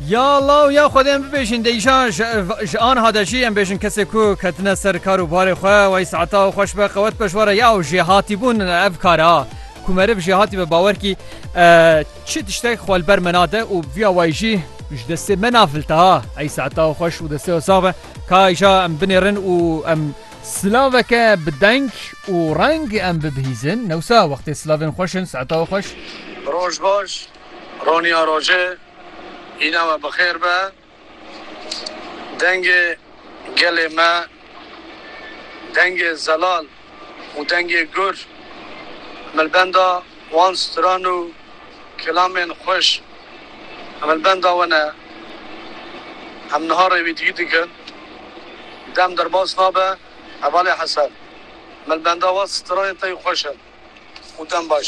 Ya law ya xwedê em bibêjin dê îşan ji anha de jî em bêjin kesê ku ketine ser kar û barê xwe wey saeta xweş be qewet be ji were ya û jêhatîbûn ev kar a ku meriv jêhatî be bawer kî çi tiştek xwe li ber me nade û viya wey jî ji destê me nafilta ha ey saeta xweş û destê sax be ka îşa em binêrin û em silaveke bi deng û reng em bibihîzin newsa wextê silavên xweş in saeta xweş. Roj baş. Roniya roje hîna we bi xêr be. Dengê gelê me, dengê zelal û dengê gur himilbenda wan stran û kelamên xweş himilbenda we ne. Em niha rêwîtîgî dikin. Dem derbas nabe hevalê hesel. Himilbenda we stranên te yê xweş in û dem baş.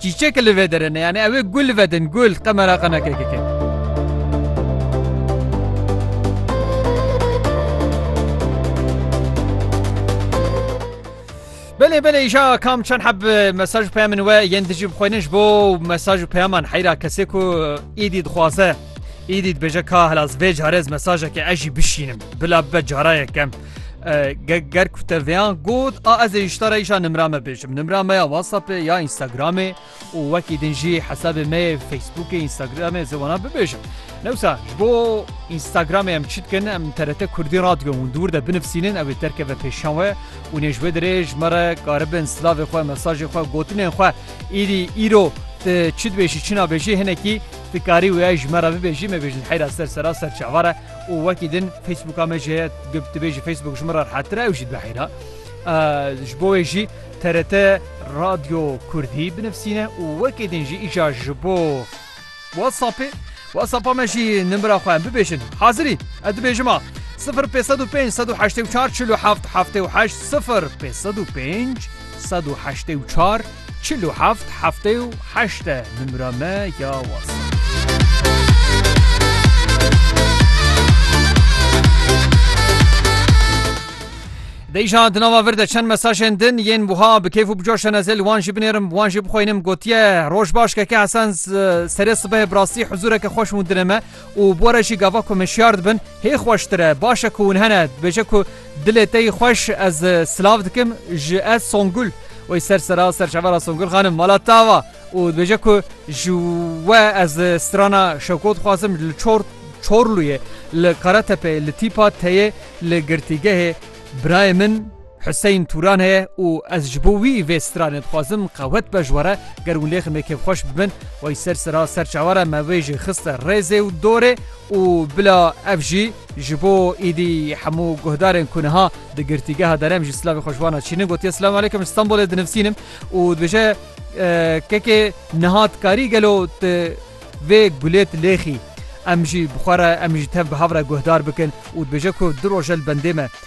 Çîçek li vê derê ne yanî ew ê gul vedin gul qe meraqa neke keke. Belê belê îşa kam çend heb mesaj û peyamên we yên dijî bixwînin ji bo mesaj û peyaman heyra kesê ku îdî dixwaze îdî dibêje ka helas vê carez mesajeke ez jî bişînim bila bibe cara yekem. ger ku te vêyan got a ez ê îştara îşa nimra me bêjim nimra me ya whatsappê ya instagramê û wekî din jî hesabê me yê facebookê instagramê ziwana bibêjim newsa ji bo instagramê em çi dikin em terete kurdî radyo hûn dûr de binifsînin ew ê derkeve pêşan we û nê ji wê dirê ji me re karibin silavê xwe mesajê xwe gotinên xwe îrî îro te çi dibêjî çi nabêjî hinekî dikarî wê ji me re bibêjî me bêjin heyra ser sera ser çavara û wekî din Facebooka me jî heye tu tibê ji Facebook ji min re rehettir e ew jî dibihîna. Ji bo wê jî TRT Radyo Kurdî binivîsîne û wekî din jî îşa ji bo WhatsAppê WhatsAppa me jî nimira xwe em bibêjin. Hazirî ez dibêjim a. 0505 184 47 78 0505 184 Çil û heft, heftê û heşt e nimra me ya WhatsApp. Dê îşan di nava vir de çend mesajên din yên wiha bi kêf û bi coş hene zê li wan jî binêrim bi wan jî bixwînim gotiye roj baş keke Hesen serê sibehê bi rastî huzureke xweş hûn dine me. Û bi re jî gava ku min şiyar dibin hê xweştir e, baş e ku hûn hene, dibêje ku dilê te yî xweş ez silav dikim ji ez Songul wê ser sera ser çavera Songul xanim mala tava û dibêje ku ji we ez strana Şewko dixwazim li çor Çorluyê li Karatepeyê li tîpa teyê li girtîgehê birayê min Hiseyn Turan e û ez ji bo wî vê stranê dixwazim qewet be ji we re, ger hûn lê ximê kêfxweş bibin, wey ser sira ser çawa re me wê jî xiste rêzê û dorê û bila ev jî ji bo îdî hemû guhdarên ku niha di girtîgeha derem jî silavê xwe ji wan re çînin gotiye Silamu Aleykum ji Stenbolê dinivsînim û dibêje kekê niha tu karî gelo tu vê gulê tu lêxî em jî bi xwe re em jî tev bi hev re guhdar bikin û dibêje ku du roje li bendê me.